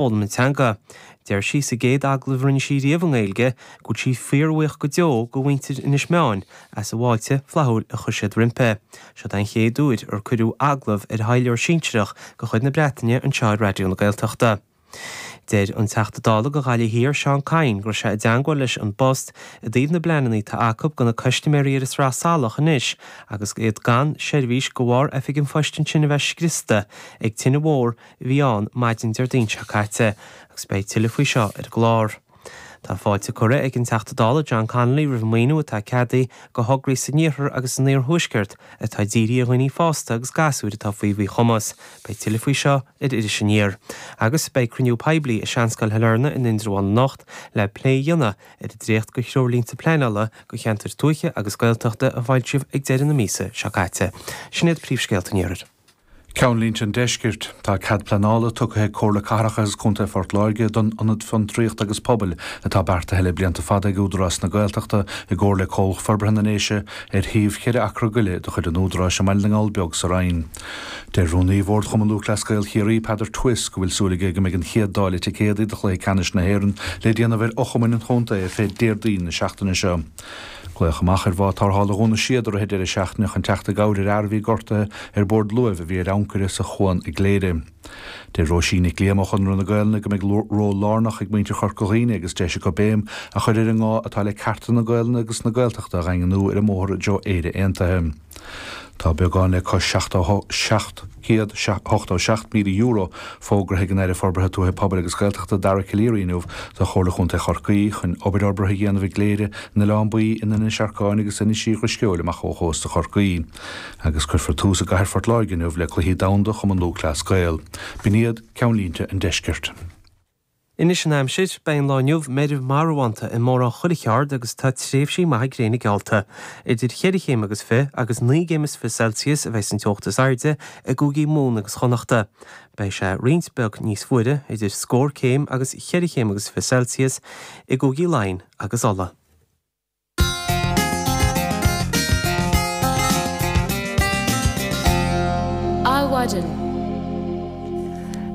foghlaim na teanga. Deir sí sa gcéad agallamh a rinne sí riamh i nGaeilge go bhfuil sí fíorbhuíoch go deo de mhuintir Inis Meáin as an bhfáilte flaithiúil a chuir siad roimpi. Seo an chéad uair ar cuireadh agallamh ar thaidhleoir sinsearach de chuid na Breataine anseo ar Raidió na Gaeltachta. Deir an Teachta Dála do Ghaillimh Thiar Seán Kyne go raibh sé i dteangmháil leis An bPost i dtaobh na bpleananna atá acu do na cuistaiméirí ar an Sraith Salach anois agus iad gan seirbhís de bharr oifig an phoist ansin a bheith scriosta ag tine mhór a bhí ann maidin Déardaoin seo caite agus beidh tuilleadh faoi seo ar an gclár. Tá fáilte curtha ag an Teachta Dála John Connolly roimh mhaoiniú atá ceadaithe go thograí san Iarthar agus san Iar Thuaisceart atá dírithe ar dhaoine fásta agus gasúir atá faoi mhíchumas. Beidh tuilleadh faoi seo ar Iris Aniar. Agus beidh cruinniú poiblí i Seanscoil Shailearna in Indreabhán anocht le plé a dhéanamh ar an dréacht de threoirlínte pleanála do cheantair tuaithe agus Gaeltachta a foilsíodh ag deireadh na míosa seo caite. Sin iad príomhscéalta an Iarthair. Ceannlínte an Deiscirt, Tá cead pleanála tugtha ag Comhairle Cathrach agus Contae Phort Láirge don Ionad Fiontraíochta agus Pobail atá beartaithe le blianta fada ag Údarás na Gaeltachta i gcomhar le Comhlacht Forbartha na nDéise ar shuíomh cheithre acra go leith de chuid an Údaráis i mBaile na nGall Beag sa Rinn. Deir Rúnaí Bhord Chumann Lúthchleas Gael Chiarraí, Peadar Twiss, go bhfuil súil aige go mbeidh an chéad dáileadh ticéadaí do chluiche ceannais na hÉireann le déanamh ar fhochumainn an chontae ar fáil Déardaoin na seachtaine seo. Glaodh amach ar bhád tarrthála Dhún na Séad i rith deireadh seachtaine chun teacht i gcabhair ar fhear a bhí gortaithe ar bord luaimh a bhí ar ancaire sa chuan i gCléire. Deir Róisín Nic Liam ó Chonradh na Gaolainne go mbeidh ról lárnach ag muintir Chorca Dhuibhne agus deis acu béim a chur ar an ngá atá le cearta na Gaolainne agus na Gaeltachta a dhaingniú ar an mbóthar i dtreo Éire Aontaithe. Tá beagán le cois €787,000 fógraithe ag an Aire Forbartha Tuaithe Pobail agus Gaeltachta Dara Calleary inniu do Chomhairle Chontae Chorcaí chun obair fhorbartha a dhéanamh i gCléire, in Oileán Baoi, in Inis Arcáin agus Inis Uí Dhrisceoil amach ó chósta Chorcaí. Agus cuirfear tús i gCathair Phort Láirge inniu le Cluichí Domhanda Chumann Lúthchleas Gael. B'in iad ceannlínte an deiscirt. Anois an aimsir, beidh an lá inniu meirbh marbhánta i mórán chuile cheard agus tá tréimhsí maithe gréine geallta. Idir cheithre chéim agus fiche agus naoi gcéim is fiche Celsius a bheas an teocht is airde i gcúigí Mumhan agus Chonnachta. Beidh sé roinnt beag níos fuaire, idir scór céim agus cheithre chéim agus fiche Celsius, i gcúigí Laighean agus Uladh. Adhmhaidin.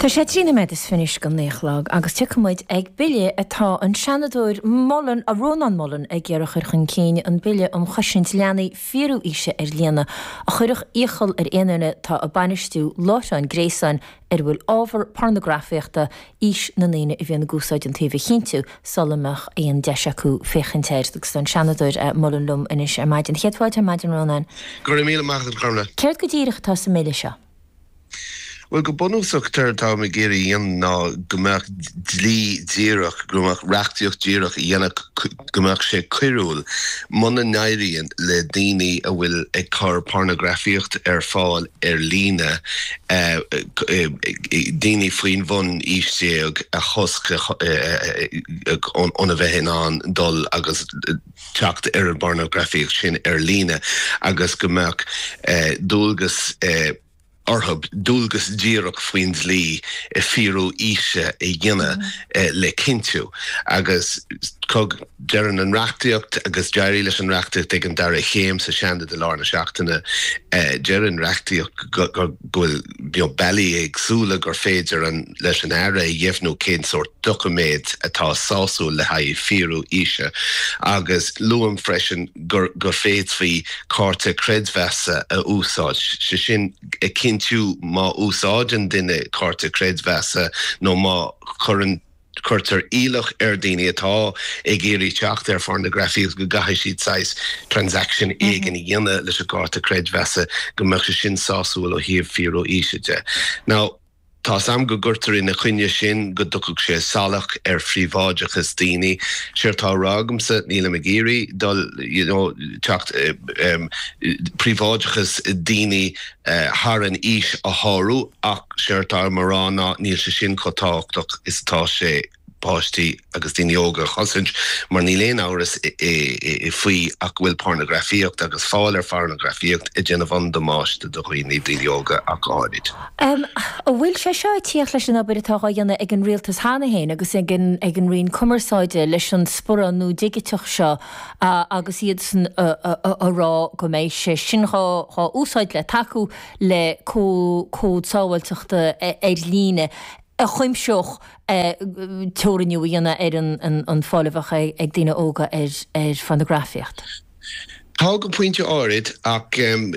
Tá sé trí noiméad is fiche anois go naoi a chlog agus tiocfaidh muid ag bille atá an Seanadóir Mullen, Rónán Mullen, ag iarraidh a chur chun cinn, an Bille um Chosaint Leanaí Fíorú-Aoise ar Líne, a chuirfeadh iachall ar aon duine atá ag bainistiú láithreán gréasáin ar a bhfuil ábhar pornagrafaíochta, aois na ndaoine a bhíonn ag úsáid an tsuímh a chinntiú sula mbeadh aon deis acu féachaint air. Agus tá an Seanadóir Mullen liom anois ar maidin. Céad fáilte ar maidin, Rónán. Go raibh míle maith agat, a Ghormlaith. Céard go díreach atá sa mBille seo? Bhuel, go bunúsach, céard atáim ag iarraidh a dhéanamh ná go mbeadh dlí díreach, go mbeadh reachtaíocht dhíreach a dhéanfadh go mbeadh sé coiriúil muna n-éiríonn le daoine a bhfuil ag cur pornagrafaíocht ar fáil ar líne daoine faoin bhun ocht déag a chosc óna bheith in ann dul agus teacht ar an bpornagrafaíocht sin ar líne agus go mbeadh dualgas orthu dualgas díreach faoin dlí a fíorú aoise a dhéanamh le cinntiú agus go ndeireann an reachtaíocht agus d'éirigh leis an reachtaíocht ag an dara chéim sa Seanad i lár na seachtaine deir an reachtaíocht go bhfuil bealaí éagsúla gur féidir an leis an Aire a dheimhniú cén sórt doiciméad atá sásúil le haghaidh fíorú aoise agus luaim freisin go bhféadfaí cárta creidmheasa a úsáid, sé sin a chinntiú má úsáideann duine cárta creidmheasa nó má chuireann, cuirtear iallach ar daoine atá ag iarraidh teacht ar phornagrafaíocht go gcaithfidh siad saghas transaction éigin a dhéanamh leis an gcárta creidmheasa go mbeadh sé sin sásúil ó thaobh fíorú aoise de. Now. Tá's a'm go gcuirtear in a choinne sin go dtiocfadh sé salach ar phríobháideachas daoine. Séard tá a rá agamsa, nílim ag iarraidh dul, you know, teacht, em, príobháideachas daoine thar an aois a shárú ach séard tá a'm a rá ná níl sé sin chomh tábhachtach is atá sé, páistí agus daoine óga a chosaint mar níl aon amhras faoi ach go bhfuil pornagrafaíocht agus fáil ar phornagrafaíocht ag déanamh an-damáiste do dhaoine, daoine óga ach go háirid. An bhfuil sé seo ag tíocht leis an obair atá dhá dhéanamh ag an Rialtas cheana féin agus ag an Roinn Cumarsáide leis an sparán nua digiteach seo agus iadsan a rá go mbeidh sé sin dhá úsáid le tacú le cód sábháilteachta ar líne? a chuimseodh teorannú a dhéanamh ar an bhfáil a bheadh ag daoine óga ar phornagrafaíocht. Tá go pointe áirid, ach ar an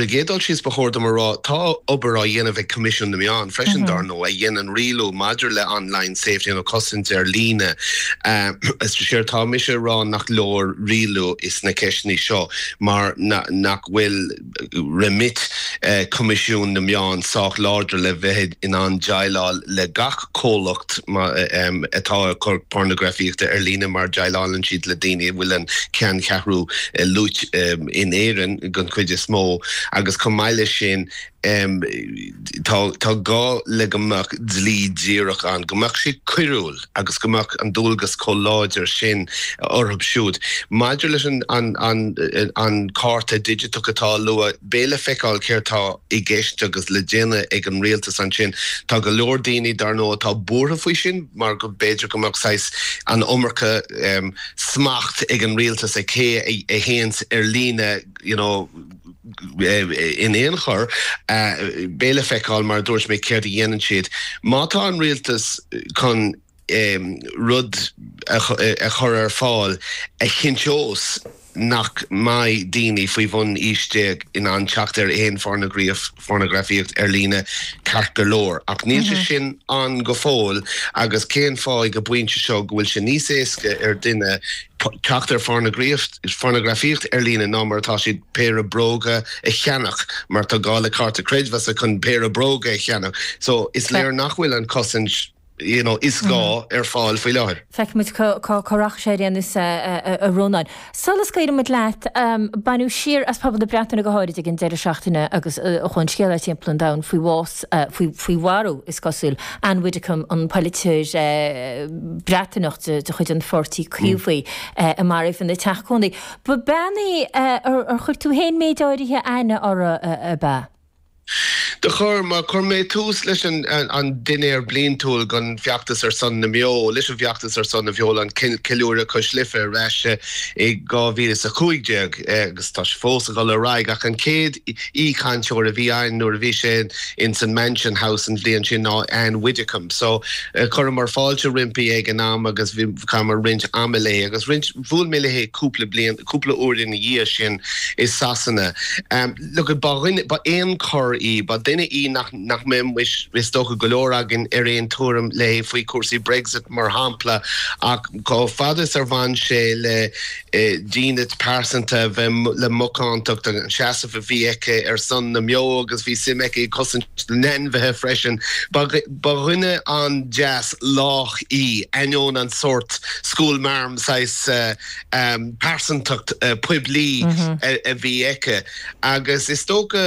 gcéad dul síos ba chóir dom a rá, tá obair á dhéanamh ag Coimisiún na Meán freisin dár ndóigh, a dhéanann rialú maidir le online safety nó cosaint ar líne. Is éard tá mise a rá nach leor rialú sna ceisteanna seo mar nach bhfuil. Remit, Coimisiún na Meán, sách láidir le bheith in ann déileáil le gach comhlacht atá ag cur pornagrafaíochta ar líne mar déileálann siad le daoine a bhfuil an cheanncheathrú lonnaithe in Éirinn den chuid is mó agus chomh maith leis sin tá gá le go mbeadh dlí díreach ann, go mbeadh sé coiriúil. agus go mbeadh an dualgas comh láidir sin orthub siúd. Maidir leis an cárta digiteach atá luaite, beidh le feiceáil céard tá i gceist agus le déanamh ag an Rialtas ansin. Tá go leor daoine, dar ndóigh, atá buartha faoi sin mar go mb'fhéidir go mbeadh saghas an iomarca smacht ag an Rialtas ag cé a théanns ar líne, you know, in aon chor. Beidh le feiceáil, mar a dúirt mé, céard a dhéanann siad. Má tá an Rialtas chun rud a chur ar fáil a chinnteos nach mbeidh daoine faoi bhun ocht déag in ann teacht ar aon phornagraíocht, phornagrafaíocht ar líne ceart go leor, ach níl sé sin ann go fóill agus cén fáth ag an bpointe seo go bhfuil sé níos éasca ar duine teacht ar phornagrafaíocht ar líne ná mar atá siad péire bróga a cheannach mar tá gá le cárta creidmheasa chun péire bróga a cheannach so is léir nach bhfuil an chosaint you know, is gá ar fáil faoi láthair. Feicfimid cá rachaidh sé ar aon nós, a Rónáin. Solas, ach coinnigh muid leat. Baineadh siar as pobal na Breataine go háirid ag an deireadh seachtaine agus chuaigh an scéala timpeall an domhain faoi bhás, faoi mharú, is cosúil, Ann Widdecombe, an polaiteoir Breataineach de chuid an pháirtí Caomhaigh a maraíodh ina teach cónaí. Ba bean í ar chuir tú féin méid áirithe aithne uirthi, ab ea? Do chuir, mar chuir mé tús leis an an dinnéar bliantúil don Fheachtas ar son na mBeo, leis an bhFeachtas ar son na mBeo, an Ceiliúradh Cois Life ar ais i 2015 agus tá sé fós ag dul ar aghaidh ach an chéad aoi-chainteoir a bhí ann nuair a bhí sé in san Mansion House an bhliain sin ná Ann Widdecombe. So chuireamar fáilte roimpi ag an am agus chaitheamar roinnt ama léi agus roinnt, bhuail mé léi cúpla bliain, cúpla uair ina dhiaidh sin i Sasana. Look it, ba dhuine, ba éan corr í, ba duine í nach, nach mbeadh muis, is dócha, go leor againn ar aon tuairim léi faoi chúrsaí Brexit mar shampla ach chomh fada is a bhain sé le dínit pearsanta a bheith, le macántacht, an seasamh a bhí aici ar son na mbeo agus bhí suim aici i gcosaint na n-ainmhithe freisin, ba, ba dhuine an-deas, lách í, ainneoin an sórt school marm saghas. pearsantacht poiblí a bhí aici agus is dócha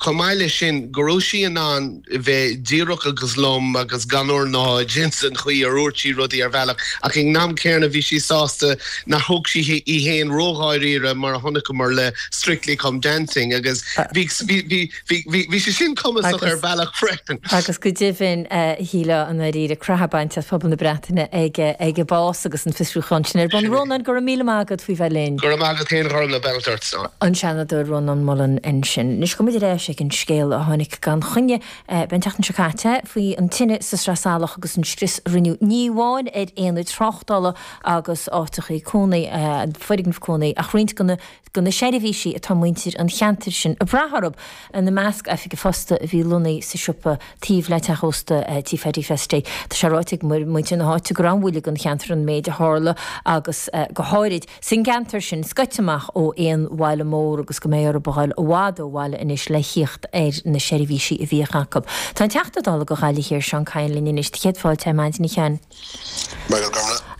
chomh maith leis sin go raibh sí in ann bheith díreach agus lom agus gan ornáid ins an chaoi ar dhúirt sí rudaí ar bhealach ach ag an am céanna bhí sí sásta nár thóg sí í fhéin ró-dháiríre mar a chonaiceamar le Strictly Come Dancing agus bhí Bhí sé sin cumasach ar bhealach freisin. Agus go deimhin is léir i ndáiríre croitheadh bainte as pobal na Breataine ag a bás agus an fiosrúchán sin ar bun. Rónán, go raibh míle maith agat faoi bheith linn. Go raibh maith agat féin, a Ghormfhlaith, beannacht ort. An Seanadóir Rónán Mullen ansin. Anois gabhaimid ar ais ag an scéal a tháinig gan choinne againn an tseachtain seo caite faoi an tine sa Sraith Salach agus an scrios a rinneadh ní amháin ar aonad tráchtála agus áiteachaí cónaí, foirgnimh cónaí, ach roinnt de na. do na seirbhísí atá muintir an cheantair sin ag brath orthu, ina measc oifig an phosta a bhí lonnaí sa siopa taobh le teach ósta Tí Phaidí Festy. Tá sé ráite ag muintir na háite gur an-bhuille don cheantar an méid a tharla agus go háirid, san gceantar sin, scoite amach ó aon bhaile mór agus go mbeidh orthu a ghabháil i bhfad ó bhaile anois le thíocht ar na seirbhísí a bhíodh acu. Tá an Teachta Dála go Ghaillimh Thiar Seán Kyne linn anois. Do chéad fáilte ar maidin a Sheáin.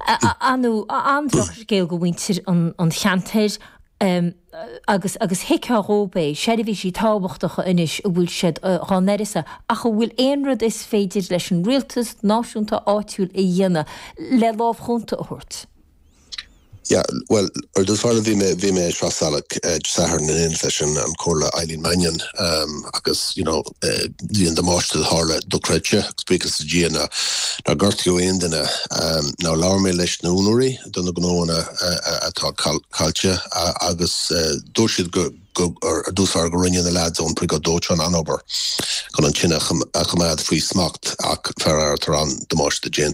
A Sheáin, an-drochscéal go mhuintir an cheantair agus agus thuigfeá dhóib é, seirbhísí tábhachtacha anois a bhfuil siad dhá n-uireasa. Ach an bhfuil aon rud is féidir leis an rialtas, náisiúnta, áitiúil a dhéanamh le lámh chúnta a thabhairt? Yeah, well, ar dtús báire bhí mé, bhí mé sa Sraith Salach Dé Sathairn in éineacht leis an an Comhairleoir Eileen Mannion agus, you know, bhí an damáiste a tharla dochreidte agus buíochas le Dia nár gortaíodh aon duine. Now labhair mé leis na úinéirí do na gnóanna atá caillte agus dúirt siad go, go, ar dtús báire go rinne na lads ón Briogáid Dóiteáin an-obair chun an tine a choimeád faoi smacht ach faraor tá an damáiste déanta.